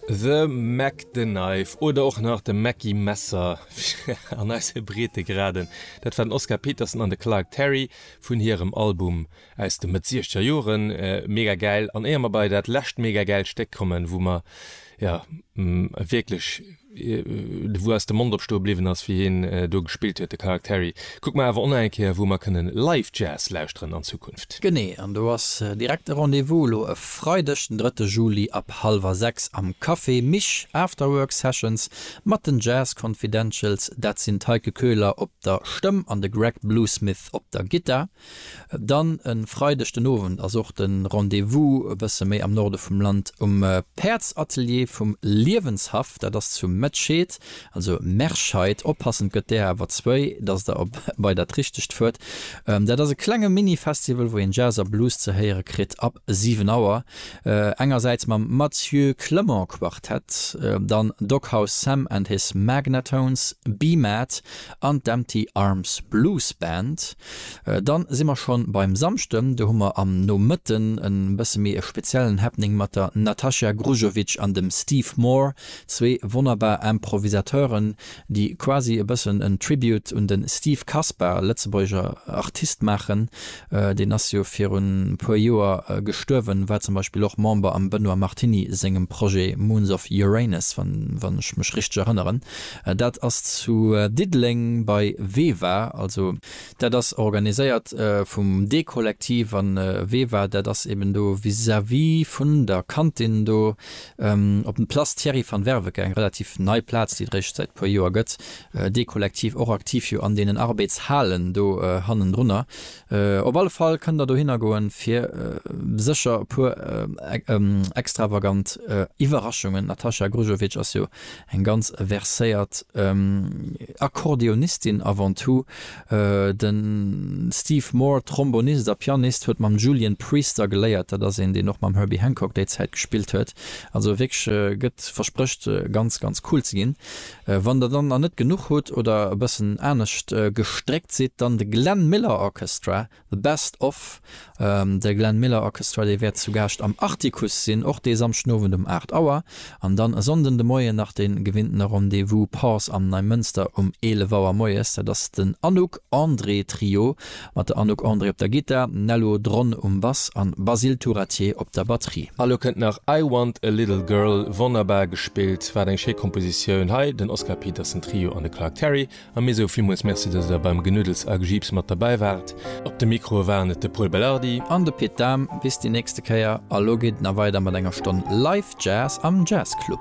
The Mac the Knife oder och nach de Mackie Messer an eise Breetegraden, dat war den Oscar Peterson an de Clark Terry vun hirem Album aus de Mëtt siechzeger Joren. Mega gäil! An éier mer bei dat lescht mega gäilt Stéck kommen, wou mer, jo, wierklech wou eis de Mond opstoe bliwwen ass wéi hien do gespillt huet de Characteri. Kucke mer awer onaeng Kéier wou mer kënne Live Jazz lauschteren an Zukunft. Genee, an do ass direkt e Rendez-vous elo e Freideg den 3 Juli ab hallwer 6 am Café Mich, Afterwork Sessions mat den Jazz Confidentials, dat sinn d'Heike Köhler op der Stëmm an de Greg Bluesmith op der Gittar. Dann e Freideg den Owend ass och de Rendez-vous e bësse méi am Norde vum Land um Päerdsatelier vum Liewenshaff. Dat ass zu Mettscheed, also Merscheid, oppassen, et gëtt där awer zwéi, dass der op bei dat Richtegt fuert. Dat ass e klenge Mini-Festival, wou een Jazz a Blues ze héiere kritt ab 7 Auer, engersäits mam Mathieu Clement Quartet, dann Doghouse Sam and his Magnatones, Be Mad an d'Empty Arms Blues Band. Dann si mer schonn beim Samschden, do hu mer am Nomëtten e bësse méi e speziellen Happening mat der Natacha Grujovic an dem Steve Moore, zwee wonnerbar Improvisateuren, déi quasi e bëssen en Tribute un den Steve Kaspar, lëtzebuergescher Artist, maachen. Deen ass jo virun e puer Joer gestuerwen, war zum Beispill och Member am Benoît Martiny sengem Projet Moons of Uranus, wann ech mech richteg erënneren. Dat ass zu Diddeleng bei VEVA, also. Dat ass organiséiert vum D-Kollektiv an VEVA, dat ass eben do vis-à-vis vun der Kantin do op dem Place Thierry van Werveke, eng relativ nei Plaz, déi et réischt säit puer Joer gëtt. D-Kollektiv och aktiv jo an deenen Arbeitshalen do hannendrunner. Op alle Fall kënnt der dohinner goen, fir sécher e puer extravagant Iwwerraschungen, d'Nataša Grujovic ass jo Eng ganz verséiert Akkordeonistin avant tout. De Steve Moore, Trombonist a Pianist, huet mam Julian Priester geléiert. Dat ass een, deen och mam Herbie Hancock déi Zäit gespillt huet. Also wierklech gëtt, versprécht ganz, ganz cool ze ginn. Wann der dann nach net genuch hutt oder e bëssen anescht gestréckt sidd, dann de Glenn Miller Orchestra The Best Of, der Glenn Miller Orchestra, déi wäert zu Gaascht am Artikuss sinn, och dee Samschdenowend um 8 Auer, an dann e Sonnden de Moien nach de gewinnten Rendez-vous Pause am Neimënster um 11 Auer moies. Dat ass den Anouk André Trio mat der Anouk André op der Gittar, Nello Dron um Bass an Basile Turatier op der Batterie. A lo kënnt nach I Want A Little Girl, wonnerbar gespillt, wat eng schéi Kompositioun, hei den Oscar Peterson Trio an de Clark Terry A mir soe villmools Merci, dass Der beim Genuddels a Gejiips mat derbäi waart. Op de Mikroe waren et de Pol Belardi. An de Pit Dahm. Bis déi nächste Kéier. A lo geet et nach weider mat enger Stonn Live Jazz am Jazzclub.